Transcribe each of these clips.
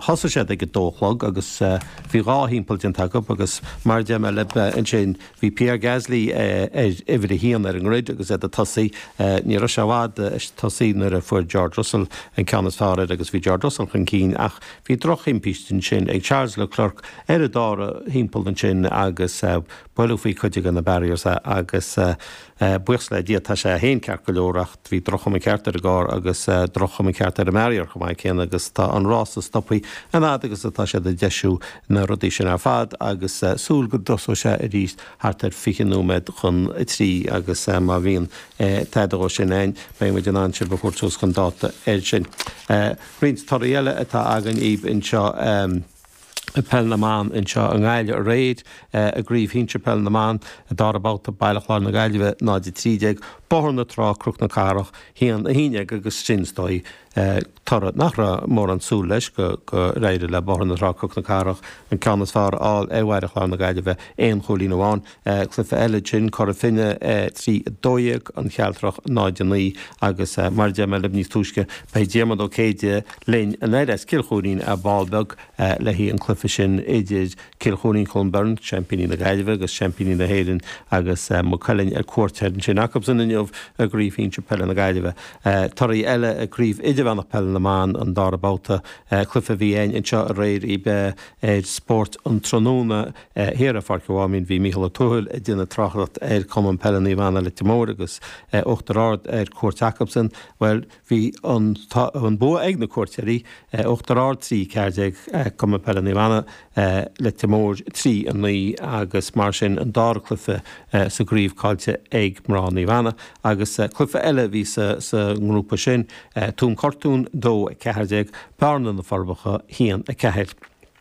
Thosaigh siad ag a dó a chlog agus bhí dhá thimpeall déanta acub agus mar a deir mé lib ansin bhí Pierre Gasly ar uimhir a haon ar an ngrid agus iad ag tosaí. Ní raibh sé i bhfad ag tosaí nuair a fuair George Russell an ceann is fearr air agus bhí George Russell chun cinn ach bhí drochthimpiste ansin ag Charles Leclerc ar an dara thimpeall ansin agus buail sé faoi chuid de na barriers agus buíochas le Dia tá sé féin ceart go leor ach Bhí droch-chuma ceart ar an gcarr agus droch-chuma ceart ar an mbarrier chomh maith céanna agus tá an rása stoptha an fhad agus atá siad ag deisiú na rudaí sin ar fad agus súil go dtosóidh sé arís thart ar fiche nóiméad chun a trí agus má bhíonn tada dhó sin ann beidh muid in ann sibh a thabhairt suas chun dáta air sin. Roinnt torthaí eile atá againn daoib anseo. Peil na mBan anseo i nGaillimh aréir i gCraobh Shinsir Peil na mBan, Dara Babhta, Baile Chláir na Gaillimhe 0-13, Bóthar na Trá, Cnoc na Cathrach 1-11 agus sin is dóigh toradh nach raibh mórán súil leis go n-éireadh le Bóthar na Trá, Cnoc na Cathrach an ceann is fearr a fháil ar Bhaile Chláir na Gaillimhe aon chúilín amháin. cluife eile ansin, Cora Finne 3, 12, An Chealtrach 0, 9, agus mar a deir mé lib níos túisce beidh Diarmaid Ó Céide linn anoir as Cill Choirín ar ball beag le haghaidh an chluife sin idir Cill Choirín Clonberne, seaimpíní na Gaillimhe agus seaimpíní na hÉireann agus Maigh Cuilinn ar cuairt thoir ansin acubhsan inniu i gCraobh Shinsir Peile na Gaillimhe. Torthaí eile i gCraobh Idirmheánach Peile na mBan an dara babhta, cluife a bhí a'inn anseo aréir i mbeo ar Spórt an Tráthnóna, Thiar i bPáirc an Mháimín bhí Mícheál Ó Tuathail ag déanamh tráchtaireacht ar Cumann Peile Naomh Anna Leitir Móir agus Uachtar Ard ar cuairt acubsan. Bhuel, bhí an an bua ag na cuairteoirí, Uachtar Ard 3, 14 Cumann Peile Naomh Anna, Leitir Móir 3, 9 agus mar sin an dara cluife sa gcraobh caillte ag mná Naomh Anna agus cluife eile a bhí sa sa ngrúpa sin, Tuaim Cortún 2, 14, Bearna, Na Forbacha 1, 4.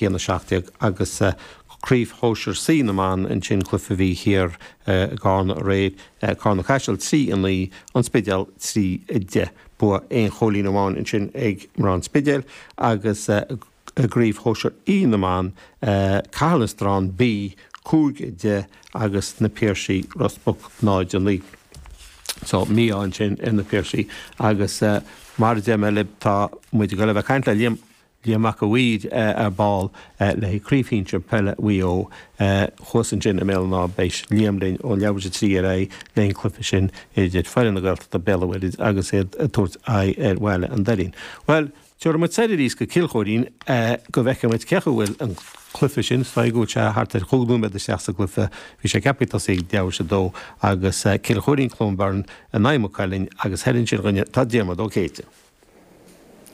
hAon 17 agus Craobh Shóisir C na mBan ansin cluife a bhí thiar i gCarna aréir, Carna-Caiseal 3, 9, An Spidéal 3, 10. Bua aon chúilín amháin ansin ag mná an Spidéil agus i gCraobh Shóisir E na mBan, Caherlistrane B 5, 10 agus Na Piarsaigh Ros Muc 0, 9. So mí-ádh ansin ar na Piarsaigh agus mar a deir mé lib tá muid ag dul a bheith ag caint le Liam Liam Mac an Bhaird ar ball le craobh shinsir peile Mhaigh Eo. Thuas ansin i mBéal an Átha beidh Liam linn ó leathuair is a trí ar aghaidh leis an chluiche sin idir foireann na Gaeltachta, Béal an Mhuirthead agus iad ag tabhairt aghaidh ar Bhaile an Doirín. Bhuel, tabharfaidh muid soir arís go Cill Choirín go bhfeicfidh muid cé acu bhfuil an cluiche sin, is dóigh go bhfuil sé thart ar chúig nóiméad isteach sa gcluiche, bhí sé ceaptha ag tosaí ag leathuair is a dó agus Cill Choirín, Clonberne in aghaidh Maigh Cuilinn agus thoir ansin tá Diarmaid Ó Céide.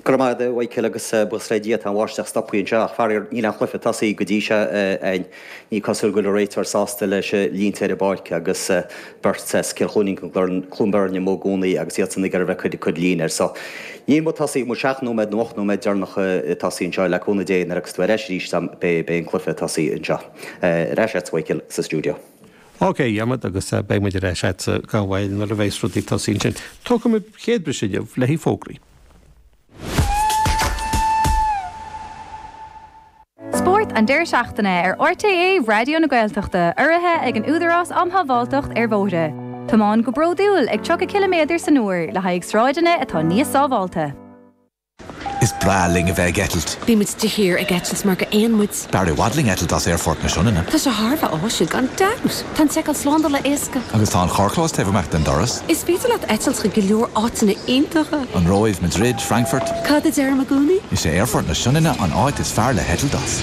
Go raibh maith a'd a Chóil agus buíochas le Dia tá an bháisteach stoptha anseo ach faraor níl an cluiche tosaithe go dtí seo a'ainn. Ní cosúil go bhfuil an réiteoir sásta leis na línte ar an bpáirc agus beirt as Cill Chluinín Cluain Bheirn amuigh i gcónaí agus iadsan ag iarraidh a bheith ag cur línte air so níl muid tosaithe tá muid seacht nóiméad nó ocht nóiméad deireanach ag tosaí anseo le cúnamh Dé nuair a thiocfas tú ar ais arís beidh an cluiche tosaithe anseo. Ar ais a'tsa a Chóil sa stiúideo. OK, a Dhiarmuid, agus beidh muid ar ais agatsa gan mhoill nuair a bheas rudaí tosaithe ansin. Tógfaidh muid an chéad bhriseadh inniu le haghaidh fógraí. Spórt an deiridh seachtaine ar RTÉ Raidió na Gaeltachta urraithe ag an Údarás um Shábháilteacht ar Bhóithre. Tiomáin go bródúil ag 30 ciliméadar san uair le haghaidh sráideanna atá níos sábháilte. Is breá linn a bheith ag eitilt. Bímid de shíor ag eitilt mar gur éin muid. Is fearr i bhfad linn eitilt as Aerfort na Sionainne. Tá sé thar a bheith áisiúil gan dabht! Tá an tseiceáil slándála éasca. Agus tá an carrchlós taobh amach den doras. Is féidir leat eitilt chuig go leor áiteanna iontacha. An Róimh, Madrid, Frankfurt. Cad a deirim i gcónaí? Is é Aerfort na Sionainne an áit is fearr le heitilt as.